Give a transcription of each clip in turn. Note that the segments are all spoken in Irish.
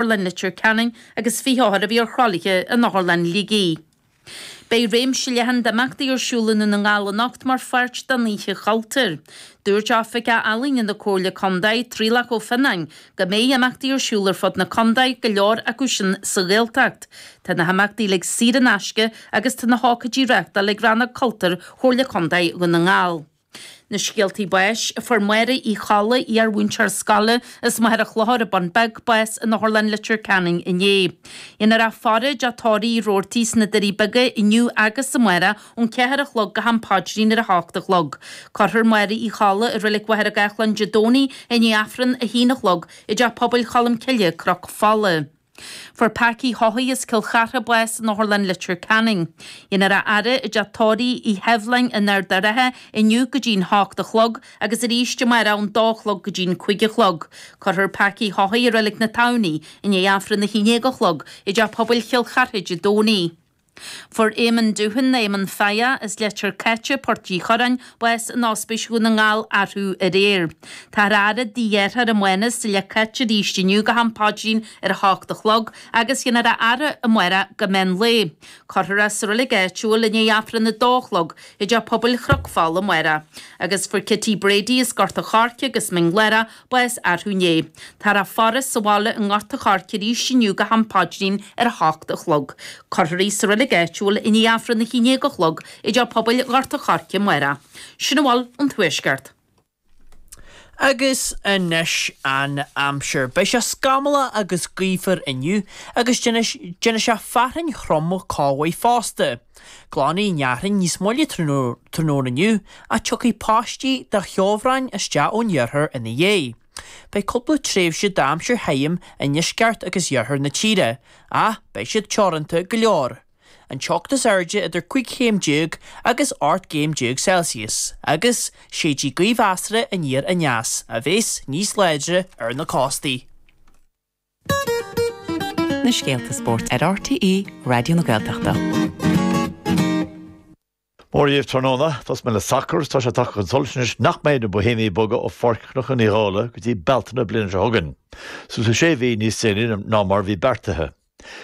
Otharlann Leitir Ceanainn agus 20 othar a bhí ar thralaithe in Otharlann Shligigh. Beidh réimse leathan d'imeachtaí ar siúl i nDún na nGall anocht mar pháirt den Oíche Chultúir. Dúirt Oifigeach Ealaíne na Comhairle Contae, Traolach Ó Fionnáin, go mbeidh imeachtaí ar siúl ar fud na contae, go leor acu sin sa Ghaeltacht. Tá na himeachtaí uilig saor in aisce agus tá na hócáidí á reáchtáil ag Rannóg Cultúir Chomhairle Contae Dhún na nGall. Na scéaltaí báis a fuair Máire Uí Cholla, iar-mhúinteoir scoile as Machaire Chlochair, An Bun Beag, bás in Otharlann Leitir Ceanainn inné. Dhéanfar a faire i dteach tórraimh Roarty sna Doirí Beaga inniú agus amárach ón ceathair a chlog go ham paidrín ar a h-ocht a chlog. Cuirfear Máire Uí Cholla i Reilig Mhachaire Gathlán Dé Domhnaigh i ndiaidh Aifreann a h-aon a chlog i dTeach Pobail Cholm Cille, Cnoc Fola. Fuair Packy Haughey as Cill Chartha bás in Otharlann Leitir Ceanainn. Dhéanfar a fhaire i dteach tórraimh Uí Sheibhleáin in Ard a' Rátha inniu go dtí'n h-ocht a chlog agus arís amárach ón dó a chlog go dtí'n cúig a chlog. Cuirfear Packy Haughey i Reilig na Tamhnaí i ndiaidh Aifreann a h-aon dhéag a chlog i dteach pobail Chill Chartha Dé Domhnaigh. Fuair Éamon Doohan, Éamon Pheigí, as Leitir Cáite, Port Uí Churráin, bás in Ospís Dhún na nGall arú aréir. Táthar á fhaire i dtigh a dheartháir Mánas i Leitir Cáite arís inniu go ham paidrín ar a h-ocht a chlog agus dhéanfar a fhaire amárach go meán lae. Cuirfear é sa reilig áitiúil i ndiaidh Aifreann a dó a chlog i dteach pobail Chnoc Fola amárach. Agus fuair Kitty Brady as Gort a' Choirce agus Mín Lárach, bás arú inné. Táthar á faire sa bhaile i nGort a' Choirce arís inniu go ham paidrín ar a h-ocht a chlog. Cuirfear í sa reilig áitiúil i ndiaidh aifreann a h-aon dhéag a chlog i dteach pobail Ghort a' Choirce amárach. Sin a bhfuil ón Tuaisceart. Agus anois an aimsir. Beidh sé scamallach agus gaofar inniu agus déanfaidh sé fearthainn throm chomh maith fosta. Glanfaidh an fhearthainn níos moille tráthnóna inniu ach tiocfaidh paistí de cheobhrán isteach ón iarthar ina dhiaidh. Beidh cúpla tréimhse d'aimsir thirim i ndeisceart agus iarthar na tíre ach beidh siad teoranta go leor. An teocht is airde idir cúig chéim déag agus ocht gcéim déag Celsius agus séidfidh gaoth mheasartha aniar aneas a bheas níos láidre ar na cóstaí. Na scéalta spóirt ar RTÉ Raidió na Gaeltachta. Mora dhíbh tráthnóna, tosóidh mé le sacar, tá sé tagtha chun solais anois nach mbeidh na Boihéimigh ag bogadh ó Pháirc Chnocán Uí Dhálaigh go dtí Bealtaine na bliana seo chugainn. Siúd sé mhí níos déanaí ná mar a bhí beartaithe.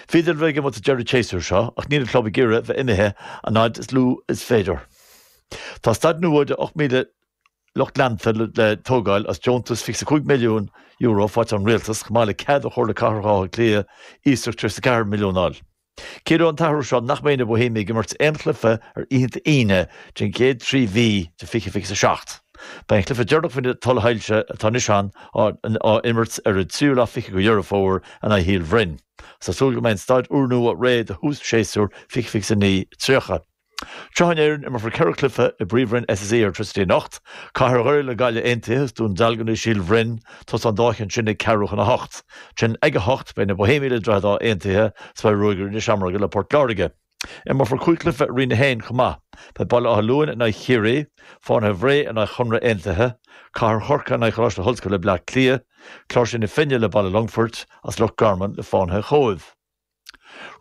Bhíodar le bogadh amach ag deireadh an tséasúir seo ach níl an club ag iarraidh a bheith imithe an fhaid is lú is féidir. Tá staid nua de 8,000 lucht leanta le tógáil as deontas €25 milliún faighte ón Rialtas chomh maith le cead ó Chomhairle Cathrach Átha Cliath iasacht €34 milliún a fháil. Ciallaíonn an t-athrú seo nach mbeidh na Bohemiaigh ag imirt aon chluife ar oícheanta Aoine don chéad trí mhí de 2027. Beidh an cluife deireanach faoi na tuilsoilse atá anois ann á imirt ar an tríú lá 20 de Dheireadh Fómhair in aghaidh Shíol Bhroin. Tá súil go mbeidh an staid úrnua réidh do thús séasúr 2029, 30. Seo in Éirinn, imearfar ceithre cluiche i bPríomhroinn SSE Airtricity anocht. Cathair Dhoire le Gaillimh aontaithe is Dún Dealgan is Síol Bhroin tosóidh an dá cheann sin ag ceathrú chun a hocht. Ansin ag a hocht beidh na Bohemiaigh le Droichead Átha aontaithe is beidh Ruagairí na Seamróige le Port Láirge. Imearfar cúig chluiche i Roinn 1 chomh maith. Beidh Baile Átha Luain in aghaidh Chiarraí, Fánaithe Bhré in aghaidh Chonradh aontaithe, Cathair Chorcaí in aghaidh Choláiste na hOllscoile Bleá Cliath, Cláirsigh na Finne le Baile Longfoirt, is Loch Garman le Fánaithe Chóibh.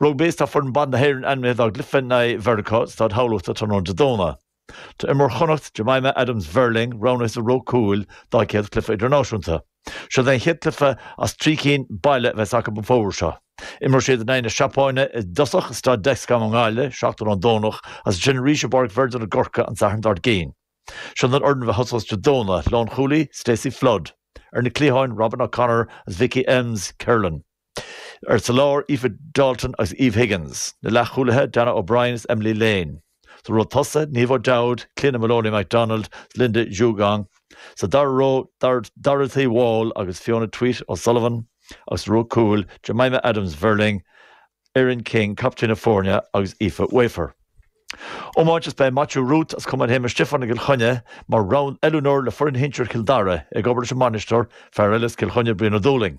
Rugbaí, Tá foireann ban na hÉireann ainmithe dá gcluiche in aghaidh Mheiriceá i Staid Thamhlachta tráthnóna Dé Domhnaigh. Tá imreoir Chonnacht, Jemimah Adams Verling, roghnaithe sa ró cúil dá céad cluiche idirnáisiúnta. Seo é an chéad cluiche as trí cinn baile a bheas acu an fómhar seo. Imreoidh siad in aghaidh na Seapáine i dtosach i Staid Dexcom i nGaillimh seachtain ón Domhnach agus ansin arís i bPáirc Virgin i gCorcaigh an Satharn dár gcionn. Seo an fhoireann a bheas ag tosú Dé Domhnaigh, Lán-chúlaí, Stacey Flood. Ar na cliatháin, Robyn O'Connor agus Vicky Elmes Kinlan. Ar sa lár, Aoife Dalton agus Eve Higgins. Na leathchúlaithe, Dannah O'Brien is Emily Lane. Sa ró tosaigh, Niamh O'Dowd, Cliodhna Moloney MacDonald is Linda Djougang. Sa dara ró, Dorothy Wall agus Fiona Tuite O'Sullivan. Agus sa ró cúil, Jemimah Adams Verling, Erin King, captaen na foirne, agus Aoife Wafer. Iomáint is beidh Maitiú Ruth as Cumann Shéamuis Stiofáin i gCill Chainnigh mar oiliúnóir le foireann shinsir Chill Dara, ag obair leis an mbainisteoir, fear eile as Cill Chainnigh, Brian Ó Dúlaing.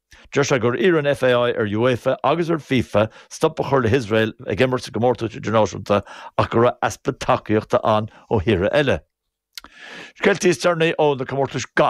Deir sé gur iarr an FAI ar UEFA agus ar FIFA stop a chur le hIosrael ag imirt i gcomórtais idirnáisiúnta ach go raibh easpa tacaíochta ann ó thíortha eile. Scéalta is deireanaí ó na comórtais gailf.